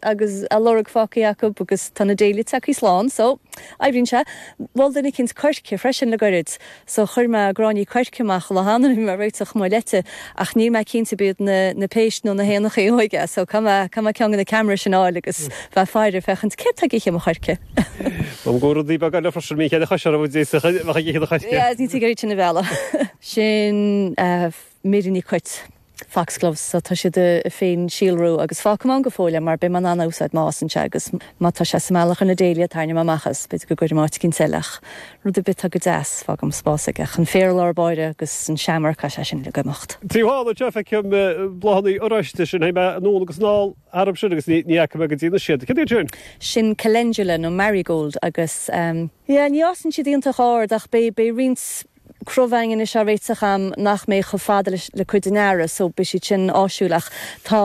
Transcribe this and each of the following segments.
agus a lorg fágtha acu agus tá na dáiliachaí slán so oibríonn sé. Mhol duine eicínt coirce freisin le goirid so chuir mé gráinní coirce amach in áit a réiteach mo leite ach níl mé cinnte ab iad na na péist nó na héanachaí a thóig é so caithfidh mé caithfidh mé ceann de na camera sin a fháil agus bheith ag faire féachaint céard tá ag ithe mo choirce. Tá go raibh rudaí beaga le freisin mí chéile choise a d'fhéadfadh a bheith ag ithe do choirce. Yeah, is ní tú ag sin a bhealach. Sin Mary Ní Chuit. Foxgloves, so tá siad ag féinsíolrú agus fágfaidh mé ann go fóill é mar beidh mé in ann a úsáid má fhásann sé agus má tá sé sa mbealach ar na dáilias tarraingeoidh mé amach é is b'fhéidir go gcuirfidh mé áit eicínt eile ach rud ar bith atá go deas fágfaidh mé spás aige ach an féar lár báire agus an seamair tá sé sin le imeacht. Feicim bláthannaí oráiste sin, chuaigh mé anonn agus anall tharam sin agus ní fhaca mé go dtí anois iad. Cad iad sin? Sin Calendula nó Marigold agus ehm yeah ní fhásann siad iontach ard ach beidh roinnt Crobhaing anois á réiteach agam nach mbeidh chomh fada le cuid den earra so, beidh siad sin áisiúil. Ach tá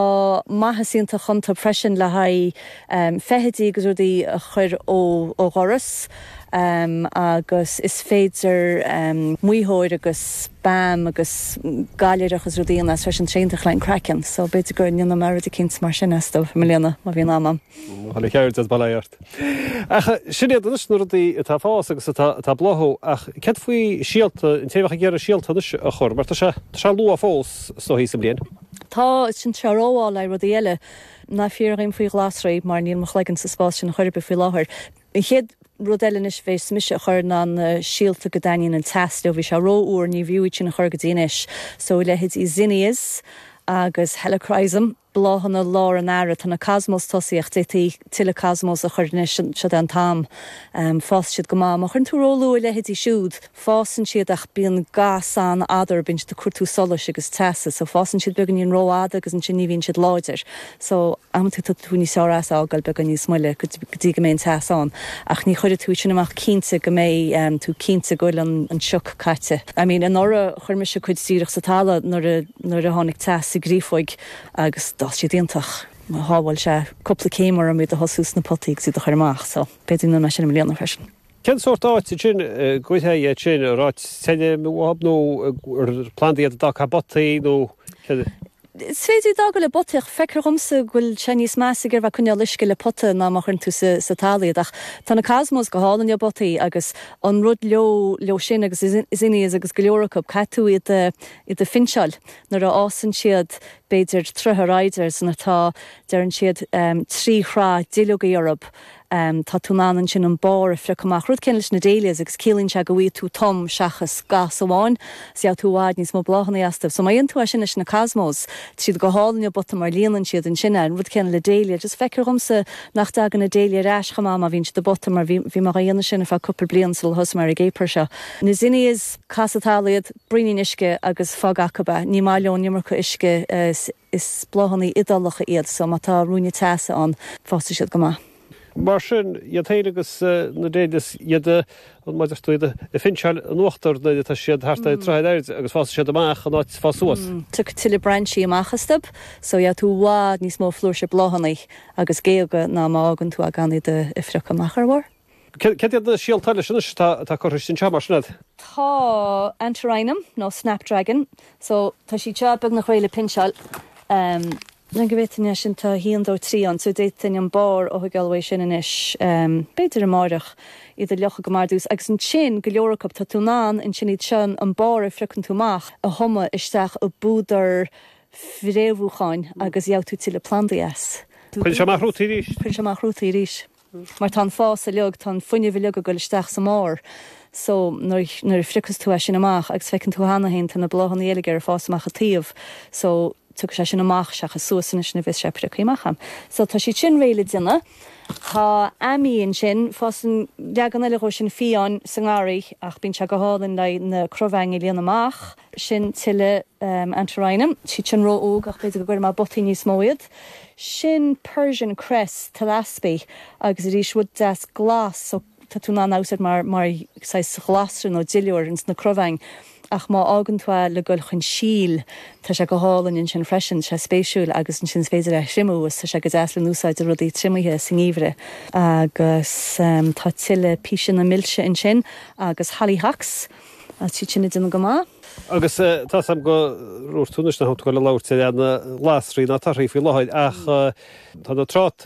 maitheas iontach iontu freisin le haghaidh feithidí agus rudaí a chur ó dhoras agus is féidir maothóir agus balm agus gallúnach agus rudaí a dhéanamh as freisin, tá sé iontach le haghaidh an chraicinn so b'fhéidir go ndéanfaidh mé rud eicínt mar sin astu i mbliana má bhíonn am agam. Tá mé i gceart sa bhaile ort. Ach sin iad anois na rudaí atá ag fás agus atá ag bláthú. Ach cad faoi síolta, an té a bheadh ag iarraidh síolta anois a chur? Mar tá sé, tá sé luath fós anois sa bhliain. Tá, tá sé róluath le rudaí eile. Ná fiafraigh díom faoi ghlasraí mar níl mo chloigeann sa spás sin chor ar bith faoi láthair. An chéad rud eile anois a bheas mise a chur ná na síolta go dtaitníonn an teas leo. Bhí sé rófhuar, ní mb'fhiú iad sin a chur go dtí anois. So a leithéid de zinnias agus helichrysum. Bláthanna lár an tsamhraidh, tá na cosmos tosaithe, d'fhéadfaí tuilleadh cosmos a chur anois, seo é an t-am. Fásann siad go maith. Má chuireann tú róluath a leithéidí siúd, fásann siad ach bíonn gas an-fhada orthu ag cuartú solais agus teasa. So fásann siad beagáinín rófhada agus ansin ní bhíonn siad láidir. So amanta tá tú níos fearr as a fhágáil beagán níos moille go dtí go mbeidh an teas ann. Ach ní chuirfidh tú iad sin amach cinnte nó go mbeidh tú cinnte go bhfuil an sioc caite. I mean anuraidh chuir mise cuid díreach sa talamh nuair a nuair a tháinig teas sa gcréafóg agus d'fhás siad iontach. Shábháil sé cúpla céim orm iad a thosú sna potaí agus iad a chur amach so b'fhéidir go ndéanfaidh mé sin i mbliana freisin. Cén sórt áit a dtéann siad sin, an áit tirim nó an plandaí iad atá acu i bpotaí nó céard é? Is féidir iad a fhágáil i bpotaí ach feictear dhomsa go bhfuil sé níos measa ag iarraidh a bheith ag coinneál uisce le pota ná má chuireann tú sa talamh iad. Ach tá na cosmos go hálainn i bpotaí agus an rud leo leo sin agus na zinnias agus go leor acu, caithfidh tú iad a iad a phinseáil. Nuair a fhásann siad b'fhéidir troigh ar airde nó nuair atá, deireann siad, trí shraith duilleogaí orthu, tá tú in ann ansin an barr a phriocadh amach, rud céanna leis na dahlias agus ciallaíonn sé go bhfaighidh tú tom seachas gas amháin, is gheobhaidh tú i bhfad níos mó bláthanna astu. So má dhéanann tú é sin leis na cosmos, tá siad go hálainn i bpota mar líonann siad ansin é, an rud céanna le dahlia, just feictear dhomsa nach dtagann na dahlia ar ais chomh maith má bhíonn siad i bpota mar bhí mé dhá dhéanamh sin ar feadh cúpla bliain sula thosaigh mé ar an gcaper seo. Na zinnias, cas sa talamh iad, braoinín uisce agus fág acub é. Ní maith leo an iomarca uisce, is bláthannaí Iodálacha iad so má tá ruainne teasa ann, fásfaidh siad go maith. Mar sin, iad féin agus na dahlias, an mhaith leo tú iad a phinseáil in uachtar nuair atá siad thart ar throigh ar airde agus fásfaidh siad amach in áit fás suas. Tiocfaidh tuilleadh brainsí amach astub so gheobhaidh tú i bhfad níos mó flúirse bláthannaí agus géaga ná má fhágann tú a' gan iad a phiocadh amach ar a bharr. Céard iad na síolta eile sin anois atá curtha isteach anseo, mar sin ad? Tá Antirrhinum nó Snapdragon. So, tá siad seo beagnach réidh le pinseáil. Len go bhféadfainn é sin, tá 1, 2, 3 ann. So, d'fhéadfainn an barr a thoigeáil uaidh sin anois, b'fhéidir amáireach, iad a fhliuchadh go maith ar dtús. Agus ansin, go leor acu, tá tú in ann ansin iad seo, an barr a phriocann tú amach, a thumadh isteach i bpúdar fréamhúcháin agus gheobhaidh tú tuilleadh plandaí as. Cuireann sé amach rútaí arís? Cuireann sé amach rútaí arís. Mar tá an fás uiliog, tá an fuinneamh uiliog ag goil isteach sa mbarr so. Nuair a phriocas tú é sin amach agus feiceann tú cheana féin tá na bláthannaí uilig air ag fás amach a' taobh so tiocfaidh sé sin amach seachas suas anois nuair a bhéas sé prioctha amach. So tá siad sin réidh le déanamh. Tá Ammi ansin, fásann leagan eile dhó sin fiáin sa ngarraí ach bíonn sé go hálainn leí na crobhaingí a líonadh amach. Sin tuille Antirrhinum. Tá siad sin ró óg ach b'fhéidir go gcuirfidh mé i bpotaí níos mó iad. Sin Persian Cress, Thlaspi, agus arís rud deas glas so tá tú in ann a úsaid mar saghas ghlasra nó duilliúr ins na crobhaingí. Ach má fhágann tú é le goil chun síl tá sé go hálainn ansin freisin. Tá sé spéisiúil agus ansin is féidir é a thriomú is tá sé go deas le n-úsáid i rudaí triomaithe sa ngeimhreadh. Agus tá tuille Píseanna Milse ansin agus Hollyhocks. Tá siad sin ag déanamh go maith. Agus tá's agam gur 'úirt tú anois nach bhfuil tú ag goil ag labhairt faoi na glasraí ná na torthaí faoi láthair ach tá na trátaí,